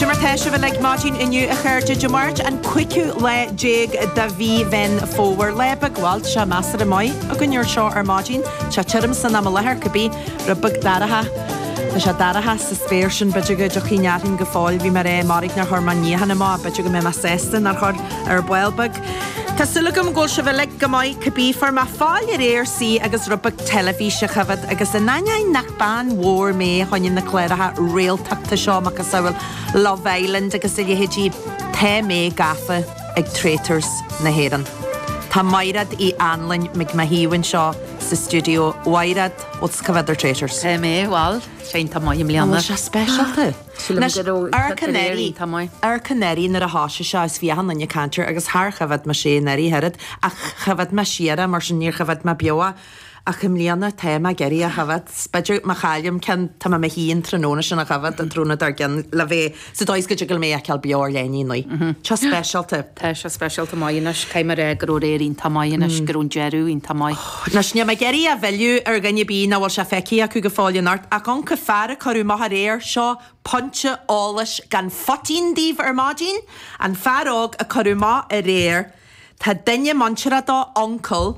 Cé mar tá sibh uilig maidín inniu, a chairde? Dé Máirt, an cúigiú lá déag de mhí Mheán Fómhair. Lá beag bhuel, tá sé measartha maith againn anseo ar maidín. Tá sé tirim san am i láthair, cibé. Rud beag dorcha. Tá sé dorcha sa spéir sin, b'fhéidir go dtiocfaidh an fhearthainn go fóill. Bhí mé ag rá, mairg nár chuir mé an níochán amach, b'fhéidir go mbeidh mé sásta nár chuir, ar ball beag. Tá súil agam go bhfuil sibh uilig go maith, cibé. Fuair mé faill aréir suí agus rud beag teilifíse a choimhead, agus in ainneoin nach Bean mhór mé fá choinne na cláracha réaltachta seo, macasamhail Love Island agus a leithéidí, tá mé gafa ag Traitors na hÉireann. Tá Maighréad Uí Annlain ag mo thaobh anseo sa stiúideo. Mhaighréad, tusa ag coimhead ar Traitors? Tá mé, bhuel, tá sé iontach maith i mbliana. An bhfuil sé speisialta? Sílim go raibh, tá sé iontach maith. Ach anuraidh nuair a thoisigh sé seo is bhí achan nduine ag caint air agus char choimhead mise anuraidh a oiread ach choimhead mé siar é mar sin níor choimhead mé beo é. Ach i mbliana, tá mé ag iarraidh a choimhead. B'fhéidir má chaillim ceann, tá mé i mo shuí an tráthnóna sin á choimhead an tráthnóna dár gcionn le bheith sa dóigh is go dtig liom é a fheiceáil beo an lá ina dhiaidh. Tá sé speisialta. Tá sé speisialta maith anois. Caithfidh mé a rá go raibh aréir iontach maith anois, go raibh an deireadh iontach maith. Anois, níl mé ag iarraidh a mhilleadh ar dhuine ar bith nach bhfuil sé feicthe acu go fóill in ort, ach an fear a cuireadh amach aréir, seo pointe eolais gan phoitín daoibh ar maidin, an fear óg a cuireadh amach aréir, tá duine muinteartha dó, uncail,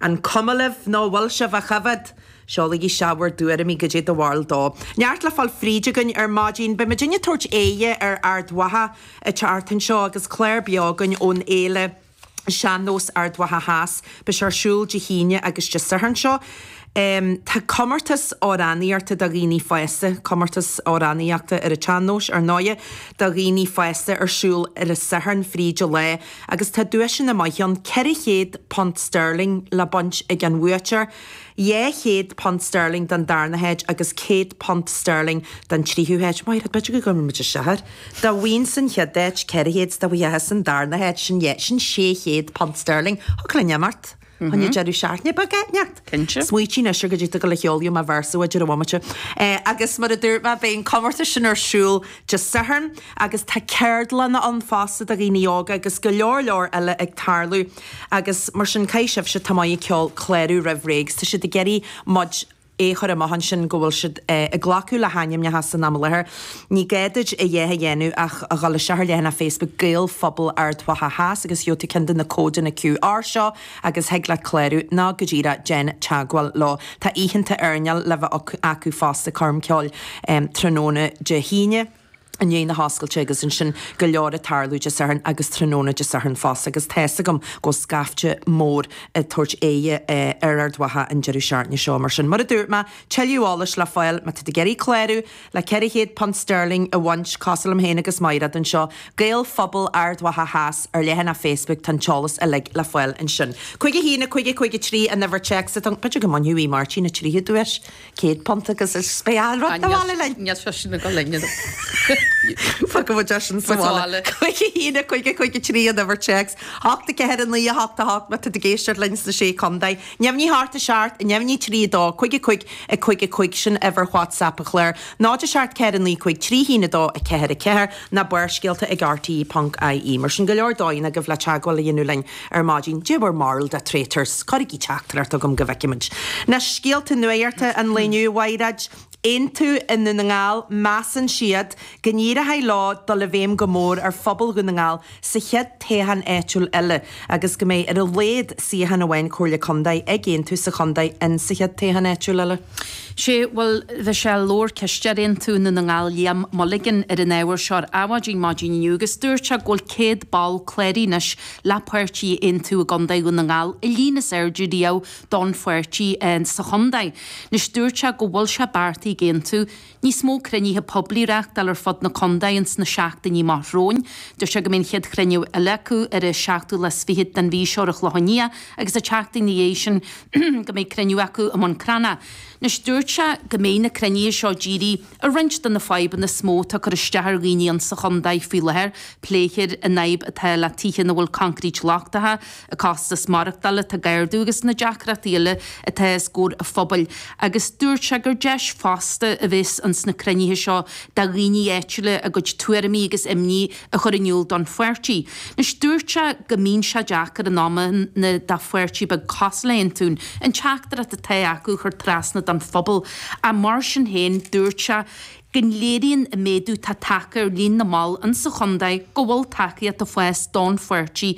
An cuma libh nó an bhfuil sibh á choimhead? Seolaigí isteach bhur dtuairimí, goidé do bharúil dó. Neart le fáil fríd againn ar maidín. Beidh muidinne ag tabhairt aghaidh ar Ard Mhacha an tseachtain seo, agus clár beo againn ón fhéile Sean-Nós Ard Mhacha Theas. Beidh sé ar siúl Dé hAoine agus Dé Sathairn seo. Tá comórtas amhránaíochta do dhaoine fásta, comórtas amhránaíochta ar an tsean-nós, ar ndóighe, do dhaoine fásta ar siúl ar an Satharn fríd an lá. agus tá duaiseanna maith ann, £400 sterling le baint ag an bhuaiteoir, £200 sterling don darna háit agus £100 sterling don tríú háit. Maighréad, b'fhéidir go gcuirfidh muid isteach air. Dá bhfaighinnse an chéad áit, £400, dá bhfaighfeása an darna háit, sin £600 sterling. Thiocfadh linn imeacht. Choinne deireadh seachtaine beag inteacht? Cinnte. Smaoitigh anois air go dtí go gceolfaidh mé véarsa duit ar an bhomaite. Agus mar a dúirt mé, beidh an comórtas sin ar siúl Dé Sathairn agus tá ceardlanna ann fosta do dhaoine óga agus go leor leor eile ag tarlú. Agus mar sin caithfidh sibhse atá maith ag ceol clárú roimh ré agus tá siad ag iarraidh muid a é chur amach ansin go bhfuil siad ag glacadh le hainmneacha san am i láthair. Ní gá duit a dhath a dhéanamh ach a dhul isteach ar leathanach Facebook Gaelphobal Ard Mhacha Theas agus gheobh tú ceann de na códanna QR seo agus thig leat clárú, nó go díreach déan teagmháil leo. Tá oícheanta airneáil le bheith acu fosta, coirm cheoil tráthnóna Dé hAoine. i ndiaidh na hoscailte agus ansin go leor ag tarlú Dé Sathairn agus tráthnóna Dé Sathairn fosta agus tá's agam go bhfuil scaifte mór ag tabhairt aghaidhe ar Ard Mhacha an deireadh seachtaine seo mar sin, mar a dúirt mé, tuilleadh eolais le fáil má tá tú ag iarraidh clárú le £400 sterling a bhaint, cosúil liom féin agus Maighreád anseo, Gaelphobal Ard Mhacha Theas, ar leathanach Facebook, tá an t-eolas uilig le fáil ansin. 51 50 53 an uimhir téacs atá agam, b'fhéidir go mbainfidh muid, a Mháirtín, an tríú duais? Céad punt agus is beidh a' rud sa mhála linn! Níl sé sin agam linn. Fágfaidh muid é sin sa mhála. Cúig a haon, a cúig, a cúig a trí an uimhir téacs, hocht, a ceathair, a naoi, a hocht, a hocht, má tá tú ag éisteacht linn sna Sé Contae. Neamhní a hocht a seacht, a neamhní Trí a dó, Cúig a cúig, a cúig a cúig, sin uimhir WhatsApp an chláir. Náid a seacht ceathair a naoi cúig trí haon a dó a ceathair a ceathair, nó Barrscéalta ag rte. ie. Mar sin go leor dóigheanna agaibh le teagmháil a dhéanamh linn. ar maidin, They were marled a traitors, cuirigí teachtaireacht chugam go bhfeicimid na scéalta nuachta an lae inniu, a Mhaighreáid. Aontú i nDún na nGall, measann siad go n-éireoidh leo dul i bhfeidhm go mór ar phobal Dhún na nGall sa chéad toghchán áitiúil eile agus go mbeidh ar a laghad suíochán amháin Comhairle Contae ag Aontú sa chontae in sa chéad toghchán áitiúil eile. Sé, bhuel, bhí sé, labhair cisteoir Aontú i nDún na nGall Liam Mulligan ar an ábhar seo ar adhmhaidin maidin inniu agus dúirt sé go bhfuil 100 ball cláraithe anois le páirtí Aontú i gContae Dhún na nGall, an líon is airde riamh don pháirtí sa chontae. Anois dúirt sé go bhfuil sé beartaithe ag Aontú. níos mó cruinnithe poiblí reachtáil ar fud na Condae ins na seachtainí amach romhainn. Dúirt sé go mbeidh an chéad chruinniú eile acu ar an seachtú lá 's fichead den mhí seo ar an Chlochán Liath agus an tseachtain 'na dhiaidh sin go mbeidh cruinniú acu i mBun Cranna. Anois dúirt sé go mbeidh na cruinnithe seo ag díriú ar roinnt de na fadhbanna is mó atá ag cur isteach ar dhaoine ins an Chondae faoi láthair, pléifear an fhadhb atá le tithe ina bhfuil concrete lochtacha, an costas maireachtáil atá ag ardú agus na deacrachtaí eile atá os comhair an phobail agus dúirt sé gur deis fosta a bheas ann sna cruinnithe seo do dhaoine áitiúla a gcuid tuairimí agus imní a chur in iúl don pháirtí. Anois dúirt sé go mbíonn sé deacair in amanna do pháirtí beag cosúil le Aontú, an teachtaireacht atá acu a chur trasna don phobal ach mar sin féin dúirt sé go léiríonn an méadú tá tagtha ar líon na mball in sa chontae go bhfuil tacaíocht ag fás don pháirtí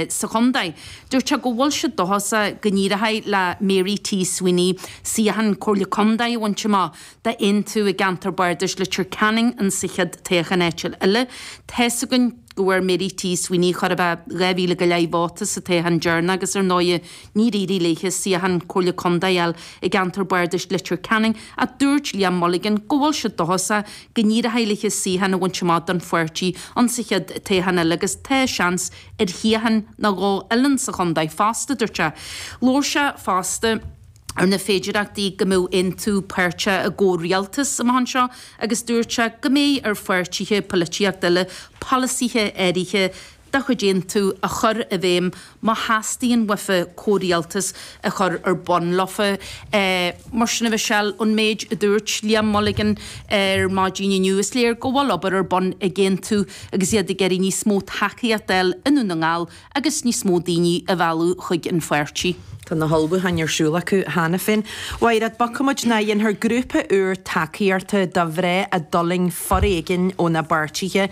sa chontae. Dúirt sé go bhfuil siad dóchasach go n-éireoidh le Mary T. Sweeney suíochán Comhairle Contae a bhaint amach d'Aontú i gceantar Bardais Leitir Ceanainn in sa chéad toghchán áitiúil eile. Tá's againn go bhfuair Mary T. Sweeney chóir a bheith 2,000 go leith vóta sa toghchán deireanach agus ar ndóigh, Níor éirigh léi suíochán Comhairle Contae a fháil i gceantar bardais Leitir Ceanainn ach dúirt Liam Mulligan go bhfuil siad dóchasach go n-éireoidh léi suíochán a bhaint amach don pháirtí insa chéad toghchán eile agus tá seans ar shuíochán nó dhó eile insa chontae fosta, dúirt sé. Labhair sé fosta ar na féidearthachtaí go mbeadh Aontú páirteach i gcomhrialtas amach anseo agus dúirt sé go mbeidh ar pháirtithe polaitíochta eile polasaithe áirithe a de chuid Aontú a chur i bhfeidhm má theastaíonn uafa comhrialtas a chur ar bun leofa. Mar sin a Mhichelle, ón méid a dúirt Liam Mulligan ar maidin inniu, is léir go bhfuil obair ar bun ag Aontú agus iad ag iarraidh níos mó tacaíocht a fháil i nDún na nGall agus níos mó daoine a mhealladh chuig an pháirtí. Tá na hullmhúcháin ar siúl acu cheana féin. Mhairéad, b'fhaca muid ná dhéanfar grúpa úr tacaíochta do mhná a d'fhulaing foréigean óna bpáirtithe.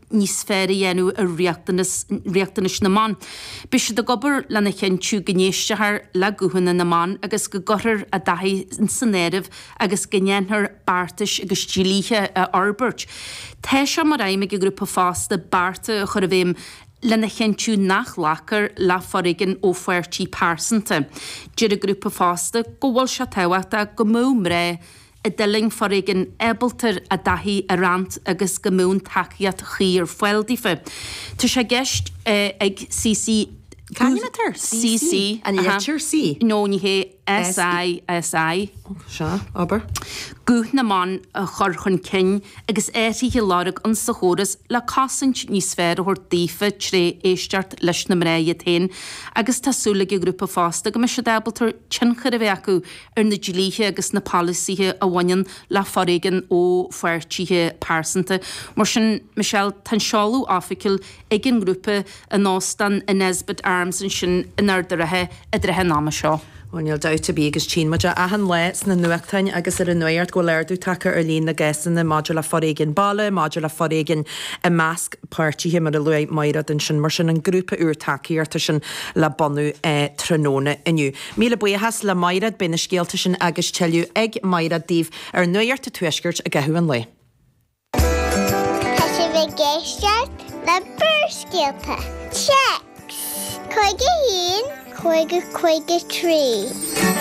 níos fearr a dhéanamh ar riachtanais na mban. Beidh siad ag obair lena chinntiú go n-éistfear le guthanna na mban agus go gcuirfear a dtaithí san áireamh agus go ndéanfar beartais agus dlíthe a fhorbairt. Tá sé mar aidhm ag an ngrúpa fosta bearta a chur i bhfeidhm lena chinntiú nach nglacfar le foréigean ó pháirtí pearsanta. Deir an grúpa fosta go bhfuil sé tábhachtach go mbeadh mná a d'fhulaing foréigean ábalta a dtaithí a roinnt agus go mbíonn tacaíocht chuí ar fáil daofa. Tá sé i gceist ag SiSi. Caithnítear CC, an litir C. No, ní hé, SI, SI. Sea, abair. Guth na mban a chur chun cinn agus athruithe a lorg insa chóras le cosaint níos fearr a thabhairt daofa tré éisteacht leis na mná iad féin agus tá súil ag an ghrúpa fosta go mbeidh siad ábalta tionchar a bheith acu ar na dlíthe agus na polasaithe a bhaineann le foréigean ó pháirtithe pearsanta. Mar sin, Michelle, tá an seoladh oifigiúil ag an ngrúpa in Óstán an Nesbitt Arms ansin in Ard a' Rátha i dtrátha an ama seo. Bhuel, níl dabht ar bith agus tchíonn muid é achan lá sna nuachtáin agus ar an nuacht go bhfuil ardú tagtha ar líon na gcásanna maidir le foréigean baile, maidir le foréigean i measc páirtithe, mar a luaigh Mairéad ansin. Mar sin, an grúpa úr tacaíochta sin le bunú tráthnóna inniu. Míle buíochas le Mairéad, beidh na scéalta sin agus tuilleadh ag Mairéad daoibh ar Nuacht an Tuaiscirt i gcaitheamh an lae. Tá sibh ag éisteacht le Barrscéalta, téacs, 51 50 53.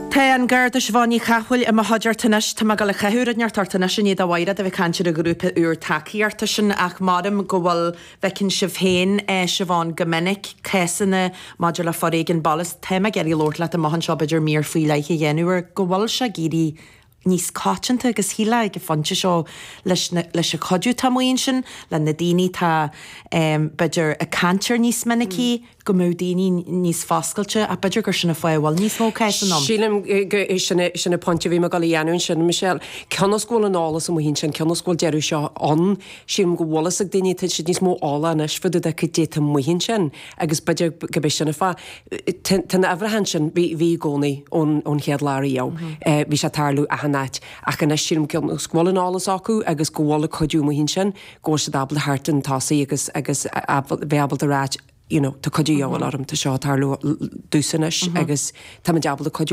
Tá an Garda Siobhán Ní Chathmhaoil i mo chuideachta anois. Tá mé ag dul ag caitheamh rud inteacht ort anois i ndiaidh do Mhairéad a bheith ag caint ar an ghrúpa úr tacaíochta sin ach maram go bhfuil bhfeiceann sibh féin, Siobhán, go minic, cásanna maidir le foréigean baile. Is tá mé ag iarraidh labhairt leat amach anseo, b'fhéidir, mír faoi leith a dhéanamh air, go bhfuil sé ag éirí níos coitianta agus shílfeá ag an phointe seo leis na, leis an chuid atá amuigh ansin, le na daoine atá, b'fhéidir, ag caint air níos minicí, go mbeadh daoine níos foscailte, ach b'fhéidir gur sin an fáth a bhfuil níos mó cásanna ann. Sílim gur sin an pointe a bhí mé ag dul a dhéanamh ansin, Michelle. Cionn is go bhfuil an eolas amuigh ansin, cionn is go bhfuil deireadh seo ann, sílim go bhfuil fhios ag daoine, tá siad níos mó eolach anois fá dtaobh de caidé atá amuigh ansin agus b'fhéidir gurb é sin an fáth. Tá na huimhreacha ansin, bhí i gcónaí ón chéad lá riamh, bhí sé ag tarlú achan áit, ach anois sílim cionn is go bhfuil an eolas acu agus go bhfuil an cuidiú amuigh ansin, go bhfuil siad ábalta theacht chun tosaigh agus agus bheith ábalta ráit you know tá cuidiú a dhíobháil orm tá seo ag tarlú domhsa anois agus táimid ábalta cuidiú